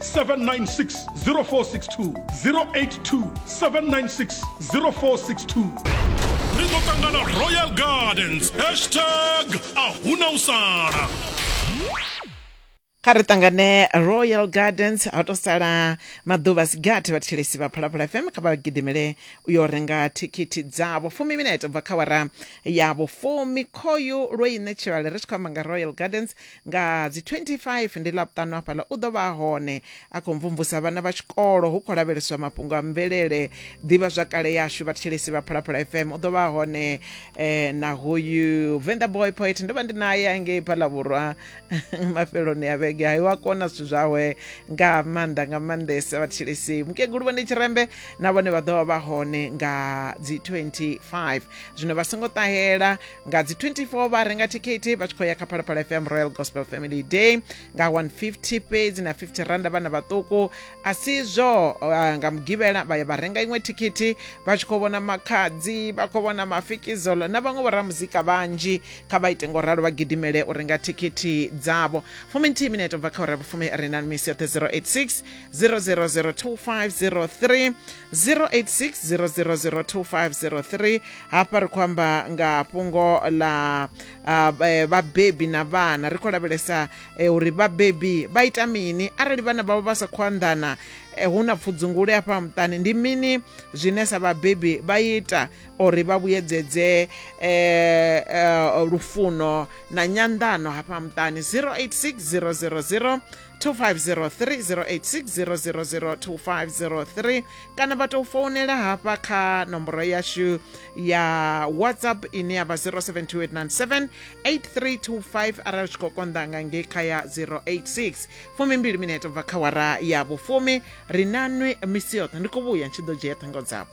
796 0462 082 796 0462 ri ḓo ṱangana royal gardens hashtag a huna u sala kha ri ṱangane royal gardens ha to sala maḓuvha sigathi vhathetshelesi vha phalaphala fm kha vha gidimele u yo renga thikhithi dzavho fumi minete bva kha wara yavho fumi khoyu lwo i ṋetshelwale ri tshi khou amba nga royal gardens nga dzi 25 ndi ḽavhuṱanu hafhaḽa u ḓo vha hone a khou mvumvusa vhana vha tshikolo hu khou lavheleswa mafhungo a mvelele ḓivha zwa kale yashu vhathetshelesi vha phalaphala fm u ḓo vha hone eh, na hoyu venda boy poet ndo vha ndi naye angei phalavhurwa mafheloni a vhege hayi wa kona zwithu zwawe nga maanḓa nga maanḓesa vhathetshelesi mukegulu vhone tshirembe na vhone vha ḓo vha vha hone nga dzi 25 zwino vha songo ṱahela nga dzi 24 vha renga thikhithi vha tshi khou ya kha phalaphala fm royal gospel family day nga 150 fhedzi na 50 randa vhana vhaṱuku a si zwo uh, nga mugivhela vha ya vha renga iṅwe thikhithi vha tshi khou vhona makhadzi vha khou vhona mafikizolo na vhaṅwe vhoramuzika vhanzhi kha vha ite ngo ralo vha gidimele u renga thikhithi dzavho fumi nthihi minete bva kha ura vhufumi ri na misi yoṱhe 086 0002503 086 0002503 hafha ri khou amba nga fhungo ḽa eh, vhabebi na vhana ri khou lavhelesa eh, uri vhabebi vha ita mini arali vhana vhavho vha sa khou anḓana eh, hu na pfudzungule hafha muṱani ndi mini zwine sa vhabebi vha ita uri vha vhuyedzedze lufuno na nyanḓano hafha muṱani 086 000 2503 kana vha tou founela hafha kha nomboro yashu ya whatsapp ine ya vha 0728978325 arali tshi khou konḓa nga ngei kha ya 086 fumimbili mineto bva kha wara ya vhufumi ri nanwi misi yoṱhe ndi khou vhuya ndi tshi ḓo dzhia ṱhango dzavho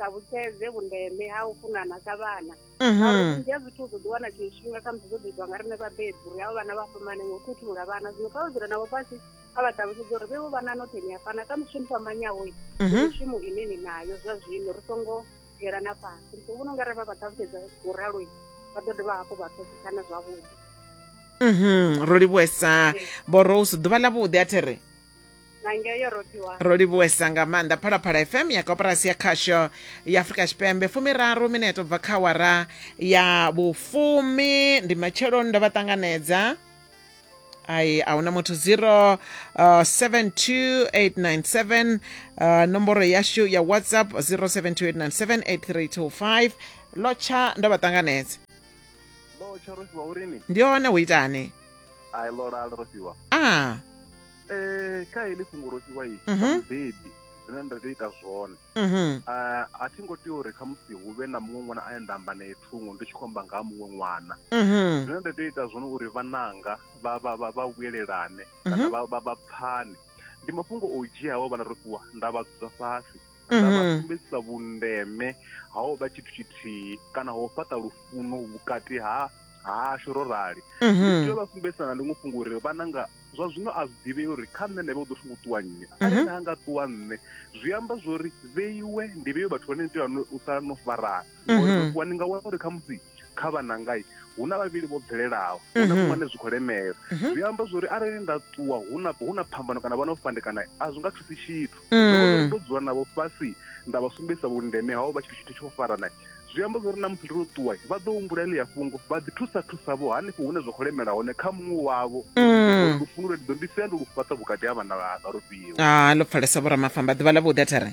ṱalutshedze vhundeme ha u funana sa vhana mhm. ngauri vhunzhi ha zwithu u ḓo ḓiwana tshiṅwe tshifhinga khamusi zwo ḓitwa nga riṋe vhabebi uri avho vhana vha fhambane ngo khethulula vhana zwino kha vha dzula navho fhasi kha vha ṱalutshedze uri vhevo vhana nothe ni a fana kha mushumo fhambanyaho mhm. mushumo ine ni nayo zwa zwino ri songo dzhielana fhasi ri songo vhona u nga ri vha vha ṱalutshedza u raloi vha ḓo dovha hafhu vha pfesesana zwavhuḓi mhm. ro livhuesa vho rose ḓuvha ḽa vhuḓi a the re na ngeo yo rothiwa ro livhuwesa nga maanḓa phalaphala fm ya koporasi ya khasho ya afurika tshipembe fumiraru mineto bva kha wara ya vhufumi ndi matsheloni ndo vha ṱanganedza ai a huna muthu 0 72897 uh, nomboro yashu ya whatsapp 0728978325 lotsha ndo vha ṱanganedza lotsha rofhiwa urini ndi hone hu itani ai lolalo rofhiwa a Eh, kha heḽi fhungo ro fhiwa i Mhm. mubebi zwine nda tea u ita zwone Mhm. Ah, a thi ngo tea uri khamusi hu vhe na muṅwe ṅwana ane nda amba nae thungo ndi tshi khou amba nga ha muṅwe ṅwana Mhm. zwine nda tea u ita zwone uri vhananga vha vha vha vha vhuyelelane kana Mhm. vha vha vha pfane ndi mafhungo o dzhiaho vhana ro fhiwa nda vha dzudza fhasi na vha Mhm. sumbedzisa vhundeme ha u vha tshithu tshithihi kana ho fhaṱa lufuno vhukati ha hashu ro rali ndi Mhm. tea u vha sumbedzisa na ḽiṅwe fhungo uri vhananga zwa zwino a zwi ḓivhei uri kha nṋe nda vha u ḓo thungo ṱuwa nṋe Mhm. arali na nga ṱuwa nṋe zwi amba zwori vheiwe ndi vheiwe vhathu vhane ni tea u sa no farana ngori ndo vuwa ndi nga wana uri khamusi kha vhanangai hu na vhavhili vho bvelelaho hu na muṅwe ane zwi khou lemela zwi amba zwori arali nda ṱuwa hu na hu na phambano kana vha no fandekana a zwi nga thusi tshithu ndo ndo dzula navho fhasi nda vha sumbedzisa vhundeme hao vha tshi tshithu tsho farana zwi amba zwori na musi ndo ṱuwa vha ḓo humbula ḽi ya fhungo vha ḓi thusa thusa vho hanefho hune zwa khou lemela hone kha muṅwe wavho uri lufuno lwe ndi ḓo ndi sia ndi lu fhaṱa vhukati ha vhana vhanga ro fhiwa ha lo pfalesa vho ramafamba ḓuvha ḽa vhuḓi a thare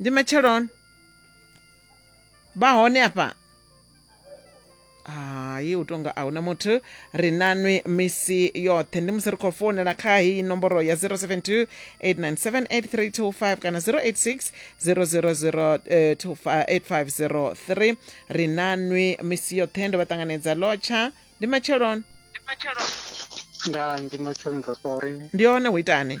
ndi matsheloni vha hone afha hayi u tonga a huna muthu ri nanwi misi yoṱhe ndi musi ri khou founela kha heyi nomboro ya 072 897 kana 086 000 8503 ri nanwi misi yoṱhe ndo vha ṱanganedza lotsha ndi matsheloni nda ndi matsheloni ro sori ndi hone hu itani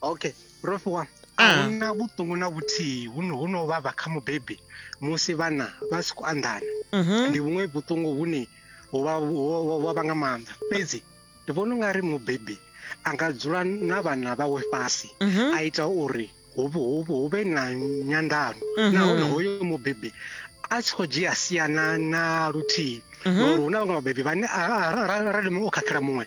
okay prof wa ah. ahuna vhuṱungu na vhuthihi hu no vhavha kha mubebi musi vhana vha si khou anḓana mhm. ndi vhuṅwe vhuṱungu vhune wa vha nga maanḓa fhedzi ndi vhona unga ri mubebi a nga dzula na vhana vhawe fhasi mhm. a ita uri hu vhe na nyandano mhm. nahone hoyo mubebi a tshi khou dzhia siana na luthihi mhm. ngauri hu na vhaṅwe vhabebi vhane arali muṅwe o khakhela muṅwe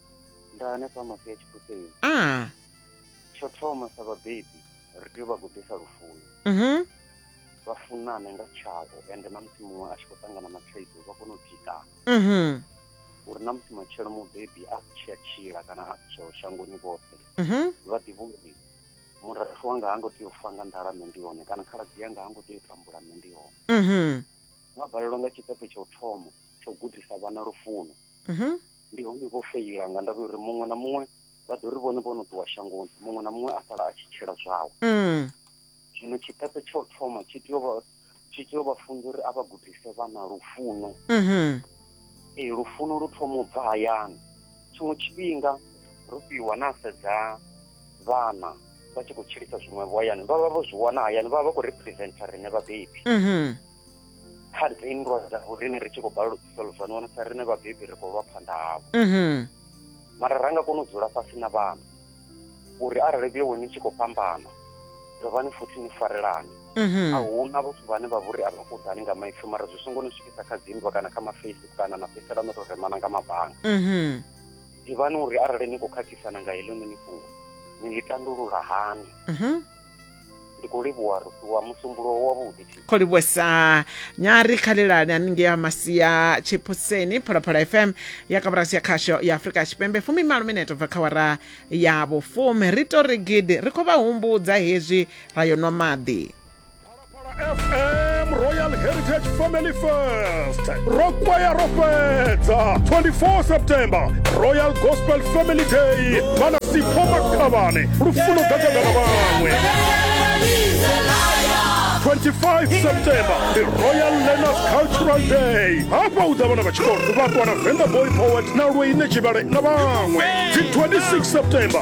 nda hanefha mafi ya tshipuseni a tsho thoma sa vhabebi ri tea u vha gudisa lufuno mhm vha funane nga tshavho ende na musi muṅwe a tshi khou ṱangana na thaidzo vha kone u tikana mhm uri na musi matshelo mubebi a si tshi a tshila kana a si tsheho shangoni vhoṱhe mhm vha ḓivhe uri murafho wanga ha ngo tea u fa nga nḓala nṋe ndi hone kana khaladzi yanga ha ngo tea u tambula nṋe ndi hone mhm mabvalelwa nga tshiṱepe tsha u thoma tsha u gudisa vhana lufuno mhm Ndi hone vho feila nga ndavha ya uri muṅwe na muṅwe vha ḓo ri vhone vho no ṱuwa shangoni, muṅwe na muṅwe a sala a tshi tshila zwawe. Mm. Zwino tshiṱepe tsha u thoma tshi tea u vha tshi tea u vha funza uri a vha gudise vhana lufuno. Mhm. Ee, lufuno lu thoma u bva hayani. Tshiṅwe tshifhinga ro fhiwa na sedza vhana vha tshi khou tshilisa zwiṅwevho hayani vha vha vho zwi wana hayani vha vha vha khou representer riṋe vhabebi. Mhm. kha ri tea nndwa dza vhorine ri tshi khou balelwa u solvani wana sa rine vhabebi ri khou lwa phanḓa havho mhm. mara ra nga kona u dzula fhasi na vhana uri arali vhuyo weni tshi khou fhambana dovhani futhi ni farelane mhm. a huna vhathu vhane vha vhori a vha kuḓani nga maipfi mara zwi songo ni swikisa kha dzinndwa kana kha mafacebook kana na fhedzisela no tou remana nga mabanga mhm. ḓivhani uri arali ni khou khakhisana nga heḽo ni ni fhungo ni ḽi tandulula hani ndi khou livhuwa rusiwa musumbulo wavhuḓi kho livhuwesa nyari khalelani haningei ha masia tshiphuseni phalaphala fm ya kaburasi ya khasho ya afurika tshipembe fumi malo mineto bva kha wara ya vhufumi ri to ri gidi ri khou vha humbudza hezwi ra yo nwa maḓi fm royal heritage family fest ro kwaya ro fhedza 24 september royal gospel family day vhana sipho makhavhane lufuno ḓadzana na vhaṅwe 25 september the royal learners cultural day hafha u ḓa vhana vha tshikolo vhaṱwa na venda boy poet na lweine tshivhale na vhaṅwe dzi 26 september